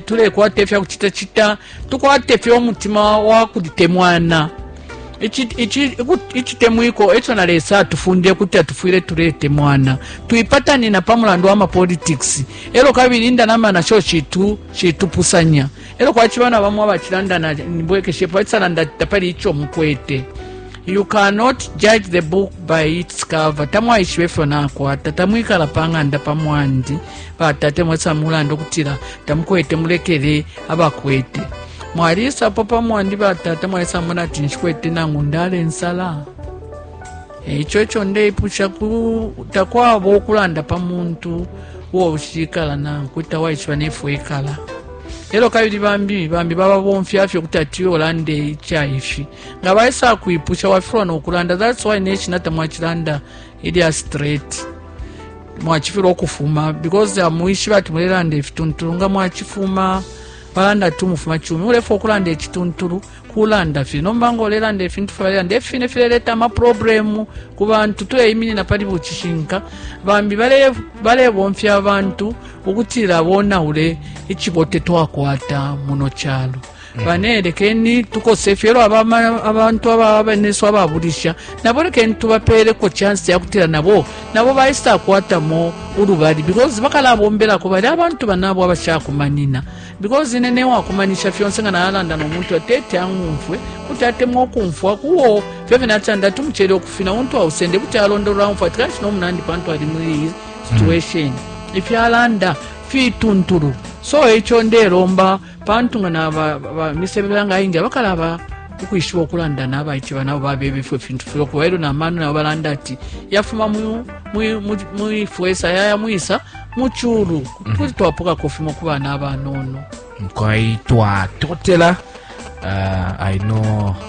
tulekwata ifya kucitacita tukwate fye umutima wa kulitemwana icitemwiko eco na lesa atufundile kuti atufwile tuletemwana twipatanina pa mulandu wa mapolitics elo kabili indanama nasho shitu shitupusanya elo kwaciba na bamwe abacilandana nibwekeshepo acisalanda ati tapali ico mukwete you cannot judge the book by its cover tamwaishiba ifyo nakwata tamwikala pa ng'anda pa mwandi batate mwesa mulanda ukutila tamukwete mulekele abakwete mwalisapo pamwandi batata mwalisa mona ati nshikwete nangu ndala ensala ekyo ekyo ndeipusha takwaba okulanda pa muntu uwo ushikala nankwe tawaishiba nefu ekala elo kabili bambi bambi bababomfya fye kuti ati olanda ikyaifi nga baisa kwipusha wafirwa nokulanda thats why neshina tamwakilanda ilya straight mwachifilwa ukufuma because amwishiba ati mulelanda ifituntulu nga mwachifuma balanda ati umufuma chumi ulefa okulanda echituntulu kulanda fye nomba nga olelanda ifintu fye balelanda efi fine fileleta amaproblemu ku bantu tuleiminina pali bucishinka bambi balebomfya abantu ukutila bonawule icibote twakwata muno calo bane lekeni tukose fye elo aba ma- abantu aba benesu ababulisha nabo lekeni tubapeeleko chansi yakutila nabo nabo baisa akwatamo ulubali because bakalabombelako bali abantu banabo abashakumanina because ine newakumanisha fyonse nga nalanda nomuntu atete ang'umfwe kuti atemwa okumfwa kuwo fyo fye natanda ati umucele okufina untu ausende kuti alondolola umfwa ati kanshi nomunandi pantu ali muli iyi situation ifyalanda fituntulu so ekyo nderomba pantu nga naba misebebe yanga ayingi abakalaba ukwishiba ukulanda nabaice banabo babeba ifwe fintu filokuba elyo namano nabo balanda ati yafuma mwifwesa yaya mwisa muculu mhm. kuti twapokako fimo ku bana abanono nkwai twatotela uh, i know